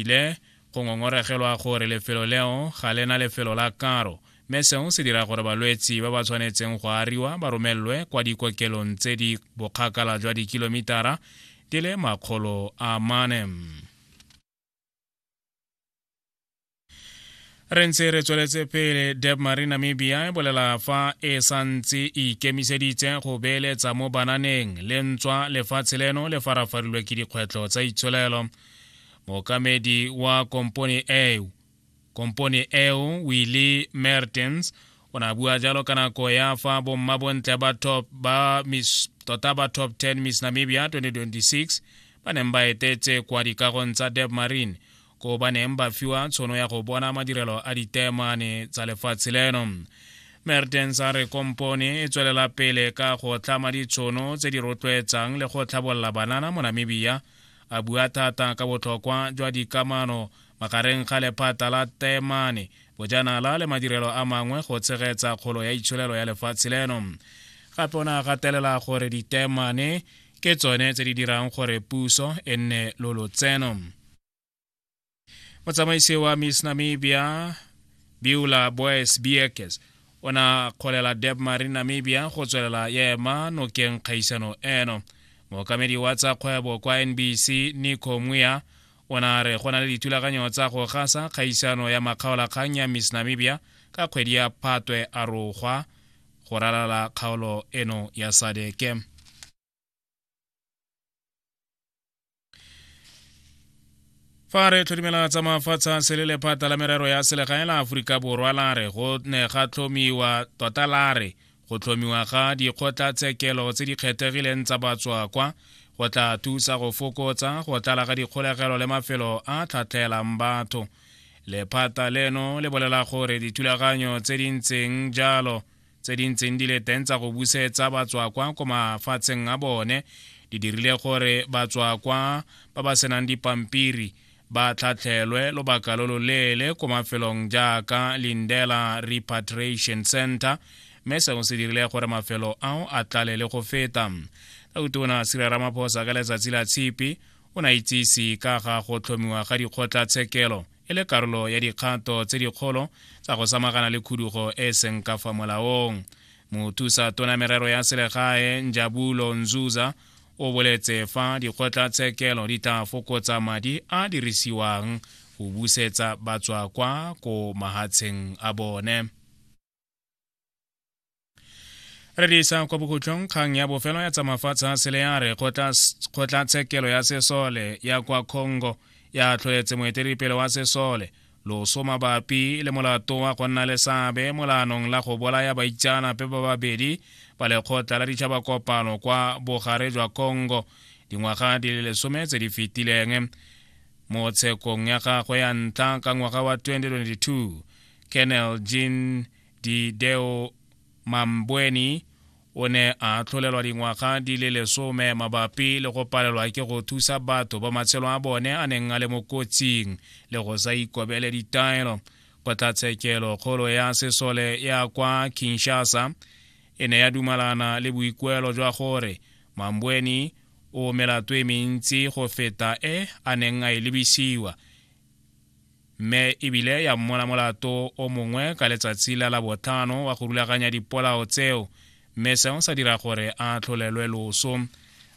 ile go ngongoregelwa gore lefelo leo ga le na lefelo la karo mme seo se dira gore balwetsi ba ba tshwanetseng go ariwa ba romelelwe kwa dikokelong tse di bokgakala jwa dikilomitara di le makgolo a mane re ntse re tsweletse pele deb marie namibia e bolela fa e santse e ikemiseditse go beeletsa mo bananeng le ntswa lefatshe leno le farafarilwe ke dikgwetlho tsa itsholelo mookamedi wa kompone eo kompone eo willy mertens o ne a bua jalo ka nako ya fa bomma bontle ba top ba miss tota ba top 10 miss namibia 2026 ba neng ba etetse kwa dikagong tsa deb marine ko ba neng ba fiwa tshono ya go bona madirelo a ditemane tsa lefatshe leno mertens a re kompone e tswelela pele ka go tlama ditshono tse di rotloetsang le go tlhabolola banana mo namibia a bua thata ka botlhokwa jwa dikamano magareng ga lephata la temane bojanala le madirelo a mangwe go tshegetsa kgolo ya itsholelo ya lefatshe leno gape o ne a gatelela gore ditemane ke tsone tse di dirang gore puso e nne lo lotseno motsamaisi wa miss namibia biula boys biekes o na kgolela deb marine namibia go tswelela ya ema nokeng kgaisano eno mookamedi wa tsa kgwebo kwa nbc nico muya o na re go na le dithulaganyo tsa go gasa kgaisano ya makgaolakgang ya miss namibia ka kgwedi ya phatwe a rogwa go ralala kgaolo eno ya sadeke fa re tlhodimela tsa mafatshe a sele lephata la merero ya selegae la aforika borwa la re go ne ga tlhomiwa tota la re go tlhomiwa ga dikgotlatshekelo tse di kgethegileng tsa batswakwa go tla thusa go fokotsa go tlala ga dikgolegelo le mafelo a tlhatlhelang batho lephata leno le bolela gore dithulaganyo tse di ntseng jalo tse di ntseng di le teng tsa go busetsa batswakwa ko mafatsheng a bone di dirile gore batswakwa ba ba senang dipampiri ba tlhatlhelwe lobaka lo loleele ko mafelong jaaka lindela repatriation center mme seo se dirile gore mafelo ao a tlale le go feta ka utona sira ramaphosa ka letsatsi la tshipi o ne a itsise ka ga go tlhomiwa ga dikgotlatshekelo e le karolo ya dikgato tse dikgolo tsa go samagana le khudugo e e seng ka fa molaong mothusa tona merero ya selegae njabulo nzuza o boletse fa dikgotlatshekelo di tla fokotsa madi a dirisiwang go busetsa batswa kwa ko mahatsheng a bone re di isa kwa bokhutlong kgang ya bofelo ya tsamafatsha sele ya re kgotlatshekelo ya sesole ya kwa congo ya tlhoetse moeteledipele wa sesole loso mabapi le molato wa go nna le seabe molanong la go bolaya baitsanape ba babedi ba lekgotla la ditšhaba kopano kwa bogare jwa congo dingwaga di le lesome tse di fetileng mo tshekong ya gagwe ya ntlha ka ngwaga wa 2022 Colonel Jean Dideo Mambweni o ne a tlholelwa dingwaga di le lesome mabapi le go palelwa ke go thusa batho ba matshelo a bone a neng a le mo kotsing le go sa ikobele ditaelo kgotlatshekelo kgolo ya sesole ya kwa kinshasa e ne ya dumalana le boikuelo jwa gore mambweni o melato e mentsi go feta e a neng a e lebisiwa mme ebile ya mmola molato o mongwe ka letsatsi la labotlhano wa go rulaganya dipolao tseo mme seo sa dira gore a tlholelwe loso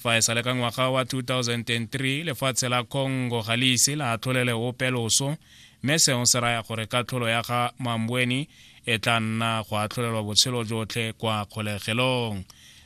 fa e sale ka ngwaga wa 2003 lefatshe la congo ga le ise la tlholele ope loso mme seo se raya gore katlholo ya ga mambweni e tla nna go atlholelwa botshelo jotlhe kwa kgolegelong